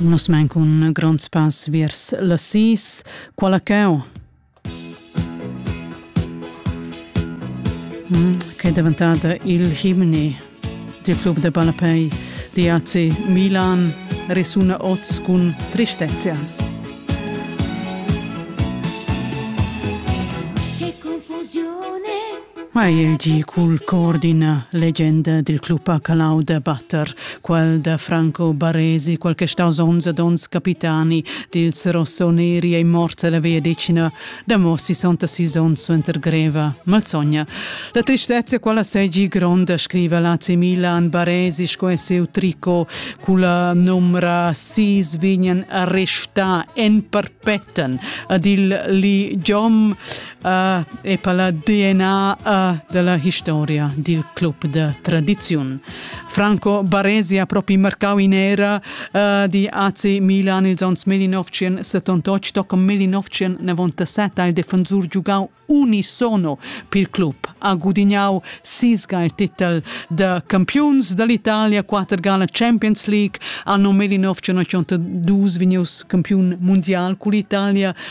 Nus main cun gronds pass vers las sis. Quala cau? Mm, che è diventata il himni del club de palapei di AC Milan resuna oz cun tristezia. Mai el di cul cor d'ina legenda dil club a Calau da batter, quel da Franco Baresi, quel che staus onns ed onns capitani dils rossoneri ei morts alla via decina da mo 66 onns suenter greva malsogna. La tristezza quella segi gronda, scriva l'AC Milan Baresi sco è seu tricot culla numra sis vignan arrestà en perpetten ad il li Giom uh, e per la DNA uh, della historia dil club de tradiziun. Franco Baresi ha proprio marcau in era uh, di AC Milan ils ans 1978, tocca 1997 il defensor giugau unisono pil club. Ha gudignau sisga il titel de Campions dall'Italia, quater gala Champions League, anno 1982 vigneus campion mondial con l'Italia,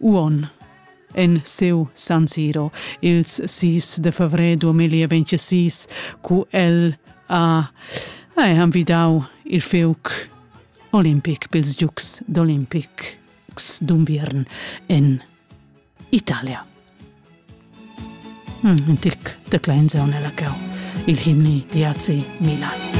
Uon en seu San Siro ils 6 de fevrer 2026 cu el ha, ha envidau il feuc olimpic pils Giugs d'Olimpic d'Unviern en Italia. Mm, in tic de klein nella cau, il himni di Azi Milan.